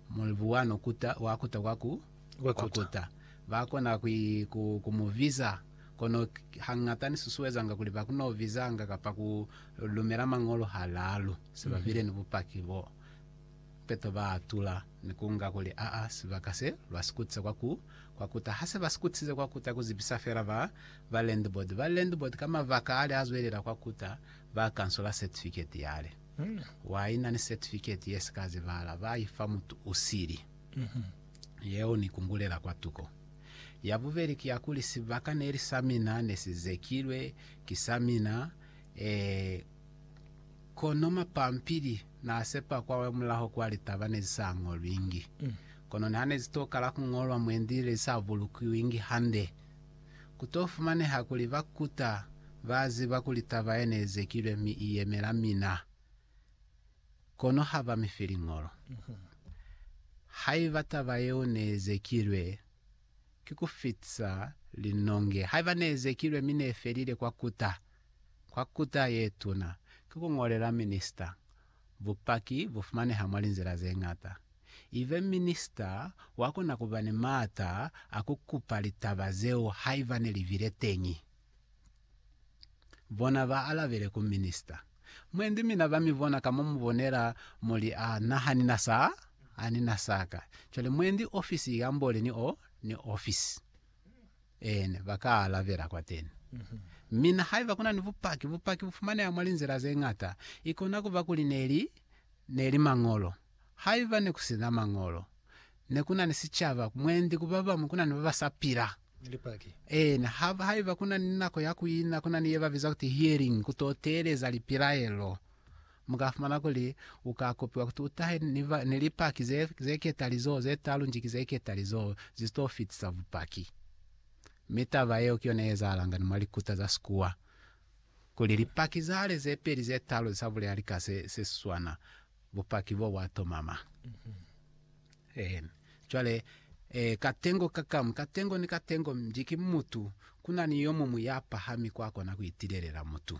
Mulimu wa no kuta, wa kuta kwa ku, kwa kuta. Ba kona ku, ku, ku mu biza. Kono hangata ni susuezanga kuli ba kuno bizanga kapa ku lumela Mañolo halalu, se ba bile ni bupaki bo peto ba atula ni ku nga kuli, Aa, sibaka se lwa si kutisa kwa ku, kwa kuta. Ha se ba si kutisize kwa kuta, ku zibisa fela ba, ba landlord. Ba landlord ka mabaka ale a zwelela kwa kuta, ba kansola certificate yale. Wa ina ni setifiketi ye si ka zibahala ba i fa mutu u sili. Yeo ni kungulela kwatuko. Ya bubeli ki ya kuli sibaka ne li sa mina, ne si zekilwe ki sa mina, ee, kono mapampili n'a sepa kwamulaho kwa litaba ne zi sa ñolwingi. Kono niha ne zi tokala ku ñolwa mwendi, ne li sa bulukiwingi hande. Ku to fumaneha kuli ba kuta ba ziba kuli taba ye ne zekilwe mi i yemela mina, kono ha ba mi fi liñolo. Haiba taba yeo ne zekilwe, ki ku fitisa linonge. Haiba ne zekilwe mi ne felile kwa kuta, kwa kuta ye tuna, ki ku ñolela minista. Bupaki bu fumaneha mwa linzila ze ñata. Ibe minista wa kona ku ba ni maata a ku kupa litaba zeo haiba ne li bile teñi. Bona ba alabele ku minista. Mwendi mina ba mi bona ka mo mu bonela mo li, A na ha ni na sa? A ni na sa ka. Cwale mwendi ofisi i kambole ni o, ni ofisi. Eena, ba ka alabela kwateni. Mi na haiba kuna ni bupaki, bupaki bu fumaneha mwa linzila ze ñata. Ikona kuba kuli ne li, ne li Mañolo. Haiba ne kusina Mañolo, ne kuna ni sicaba, mwendi ku babamu kuna ni baba sa pila. Lipaki. Eena, ha, haiba kuna ni nako ya kuina, kuna ni ye babiza kuti hearing, kuto teeleza lipilaelo. Mu ka fumana kuli u ka kopiwa kuti u tahe ni Lipaki ze, ze ketali z'o ze talu nji ki ze ketali z'o zi t'o fitisa bupaki. Mi taba yeo ki yona ye ezahalangani mwa likuta za sikuwa, kuli Lipaki za kale ze peli ze talu za bulela lika se, se swana, bupaki bo bwa tomama. Eeni. Cwale, e, katengo ka kamu, katengo ni katengo, nji ki mutu, ku na ni yo muñwi ya pahami kwa kona ku itilelela mutu.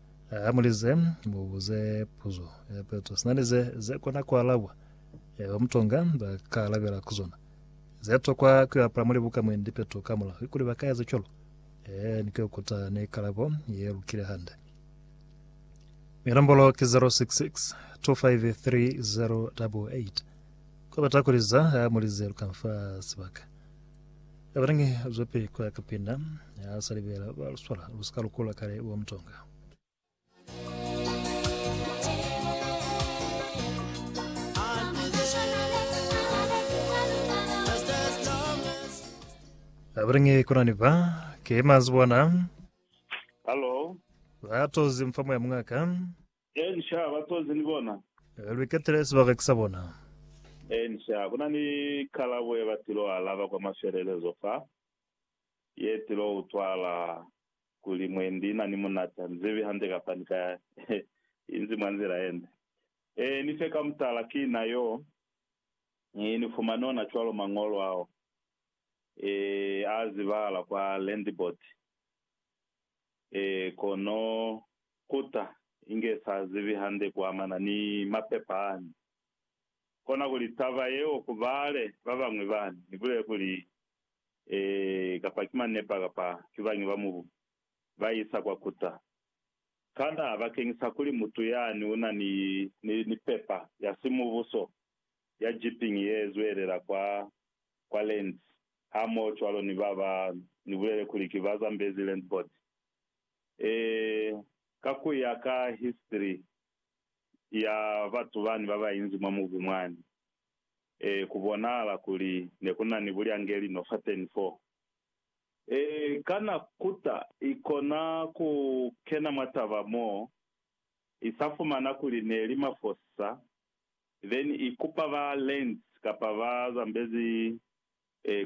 Ha mu lize, mu buze puzo ya peto. Sina ni ze, ze kona ku alabwa, yaba mutonga ba ka alabela ku zona. Ze tokwa ku yo apala muli buka mwendi peto kamulaho, ki kuli ba ka eza cwalo. Ee, ni ku yo kuta ne kalabo ye lukile hande. Mi nombolo ki 066 253 088. Ku bata ku liza, ha mu lize lu ka nfa sibaka. Abanange zope kwa kapinda ya salibela ba luswala lusika lukula kale wa mutonga. Abanange kunani ba ke mazibona Hello. batozi mfamo ya mwaka Eeni, sha. Ba tozi ni bona. Neka lu iketele sibaka sa bona. Eeni, sha. Ku na ni kalabo ye ba tilo alaba kwa mafelelezo fa, ye tilo utwahala kuli mwendi ina ni munati. Ha ni zibi hande kapa ni ka inzi mwa nzila yende. Eeni, fe ka mutala, ki na yo. Ni, ni fumani ona cwalo Mañolo ao, e, a zibahala kwa Landboard. Ee, kono ku ta, inge sa zibi hande ku amana ni mapepa ani. Kona kuli taba yeo ku bale ba bañwi bani, ni bulele kuli, Ee, kapa ki manepa kapa ki bañi ba mubu, ba isa kwa ku ta. Kana bakeñisa kuli mutu yani u na ni, ni, ni pepa ya simubuso ya jeeping ye zwelela kwa, kwa Lens, hamohocwalo ni ba ba ni bulele kuli ki ba Zambezi Land Board. Ee, ka ku ya ka history ya batu bani ba ba inzi mwa mubu mwani, ee, ku bonahala kuli ne ku na ni bulyangeli no fateni foo. Ee, kana kuta i kona ku kena mwa taba mo i sa fumana kuli ne li mafosisa, then i kupa ba Lands kapa ba Zambezi, ee,